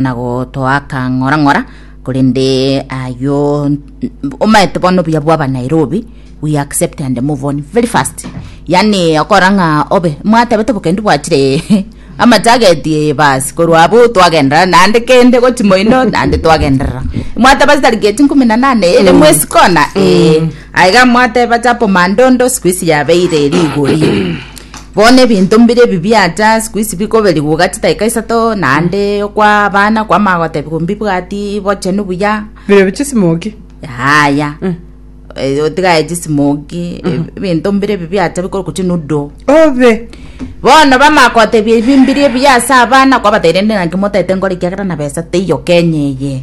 na gotoaka ng'ora ng'ora korende ayo omaete bono buya bwaba nairobi we accept and move on very fast yani okora ng'a obe mwatebete bokendi bwachire amachageti basi korwa abo twagenderera naende kende gochi moino naende twagenderera mwateba chitari geti nkumi na nane ere mwesi kona eh, aiga mwateba chapo mandondo siku isi yabeire rigori Bono ebinto mbire ebi biacha sikuisi bikoberigwa gati daika isato, naende okwa abana kwama agotebiwa mbibwati bochenu buya. Birebia chisimoki. Yaya. Eh, otigaye chisimoki, ebinto mbire ebi biacha bikorokwa chinudo. Obe. Bono bama gotebia ebi mbire ebi ase abana kwabateire rende naki motaete nkore ekiagera na besa teiyo Kenya eye.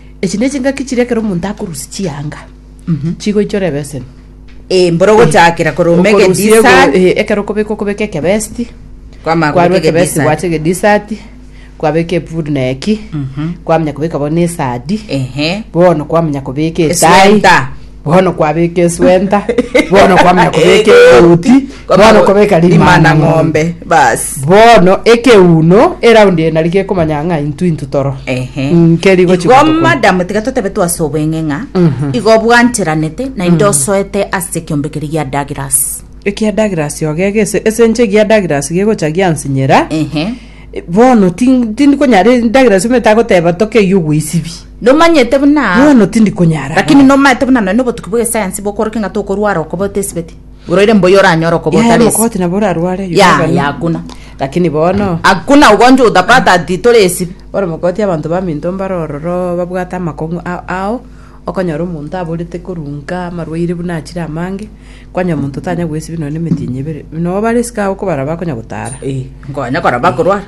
Echi ne chingaki chiria ekero omonto akorusia chianga chigoichora ebeseni. Eh, mboro gochakera koroma Okorusia ego- egedisani. eh, ekero okobeka okobeka ekebesti Kwamara kwarwa kobeka ekebesti egedisani. gwacha egedisati kwabeka epudu na eki kwamanya kobeka bono esadi Ehe. bono kwamanya kobeka etai Eswenta. Bono kwabeka eswenta, bono kwamanya kobeka egoti, bono kobeka rimana ng'ombe. Basi. Bono ekeuno eraundi eye nari gekomanya ng'a intu intu toro. Ehe. Mm, keri gochi Igo gotokonya. madam tiga totebe twase obweng'e ng'a igo obwancheranete naende osoete ase ekiombe keria gia Douglas ekia Douglas ogega ese ese inche egia Douglas gegocha giansinyera ehe bono tin- tindikonyara Douglas omanyete agoteba tokeiyo gwaisibi Nomanyete buna Bono tindi konyara Lakini goeta. nomaete buna nonya nobotuki bw'egesayansi bokorokia ng'a tokorwara okobota esibeti. Oroire mbuya oranyore okobota Yaya, resi. mokoti nabo orarware you Ya, never ya, know. hakuna. Lakini bono Hakuna ugonjwa utapata ati tore esibi. bono mokoti abanto baminto mbare ororo babwate amakong'u a- ao okonyora omonto aborete korunka amarwaire buna achire amange kwanyora omonto tanya gwesibi nonya emetienyi ebere noo bare esike agwo kobara bakonya gotara Ee, nkonya kora bakorwara.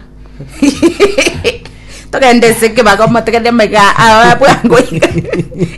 togende ase ekebagomo togende mega aa bwango iga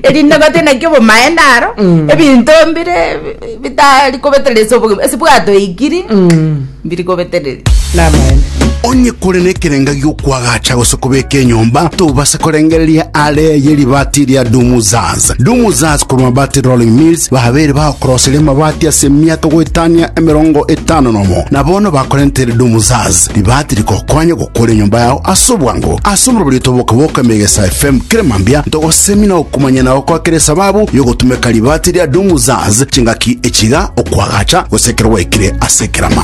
erinde ngote naki obomaene aro Mm. ebinto mbire bi- bitari kobeterera ase obogima ase bwatoigiri Mm. mbiri kobetereri Namaene. onye kore nekerenga giokwagacha gose kobeka enyomba tobase korengereria are ye ribati ria dumuzaz dumuzaz korwa mabati rolling mills babere bagokoroseria amabati ase emiato goetania emerongo etano nomo na bono bakorentere dumuzaz Ribaati rikokonya gokora enyomba yao ase obwango. Ase omoroberio otoboke boka Emegesa FM kera mambia ntogosemina okomanya na gokoa kera esababu y'ogotumeka ribaati ria Doom Zaz chingaki echiga okwagacha gose ekero gwaikire ase ekerama.